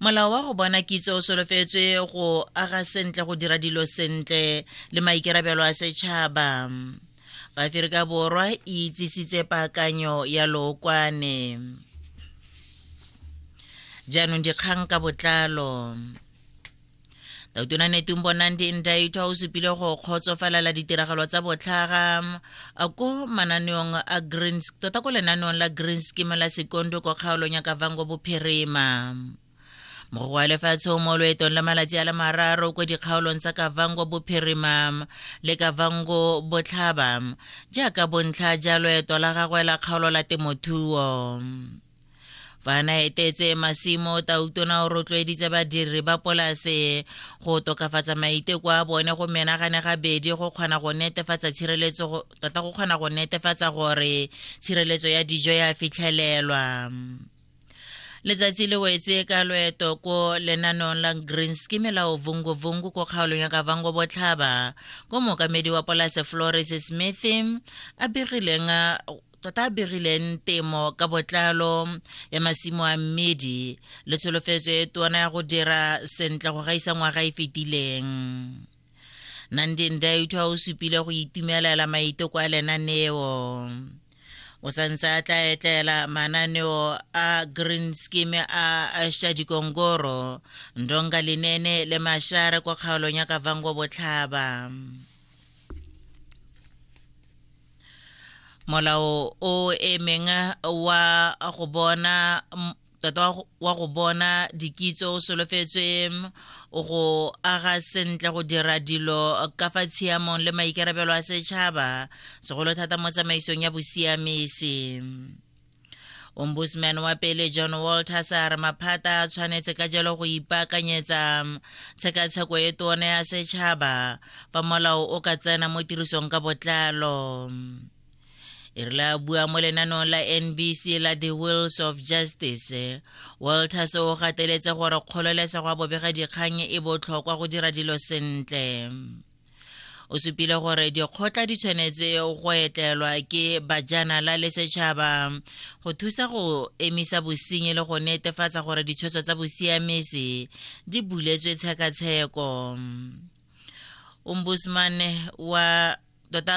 molao wa go bona kitso o solofetswe go aga sentle go dira dilo sentle le maikerabelo a setšhaba baaferika borwa e itsisitse paakanyo ya lookwane jaanong dikgang ka botlalo tautunane tumbonang di ndaitwa o supile go kgotsofalela ditiragalo tsa botlhaga ko mananeong a greens tota ko lenaneong la greens kima la sekondo ko kgaolong ya kavango bophirima mogoko wa lefatshe o mo loetong la malatsi a le mararo ko dikgaolong tsa kavango bophirima le kavango botlhaba jaaka bontlha ja loeto la gagwe la kgaolo la temothuo fa na etetse masimo tautona o rotloeditse badiri ba polase go tokafatsa maiteko a bone go menagane gabedi go kgona go netefatsa tshireletso tota go kgona go netefatsa gore tshireletso ya dijo ya fitlhelelwa letsatsi le wetse ka loeto ko lenanong la green scheme la ovungovungu ko kgaolong ya kavango botlhaba ko mookamedi wa polase flores smith a begileng tota be rileng temo ka botlalo ya masimo a mmedi le tsholofetso e tona ya go dira sentle go gaisa ngwaga e fetileng nandeng daitho a o supile go itumelela maiteko a lenaneo o santse a tla etlela mananeo a green scheme a shadikongoro ndonga linene le mashare kwa kgaolong ya kavango botlhaba molao o emeng wa go bona tota wa go bona dikitso o solofetswe go aga sentle go dira dilo ka fa tshiamong le maikarabelo a setšhaba segolo thata mo tsamaisong ya bosiamisi ombudsman wa pele john walters a re maphata a tshwanetse ka jalo go ipaakanyetsa tshekatsheko e tone ya setšhaba fa molao o ka tsena mo tirisong ka botlalo e rile a bua mo lenaneong la nbc la the wills of justice walters o gateletse gore kgololesego ya bobegadikgang e botlhokwa go dira dilo sentle o supile gore dikgotla di tshwanetse go etlelwa ke bajanala le setšhaba go thusa go emisa bosenyi le go netefatsa gore ditshwetso tsa bosiamisi di buletswe tshekatsheko ombudsman wa tota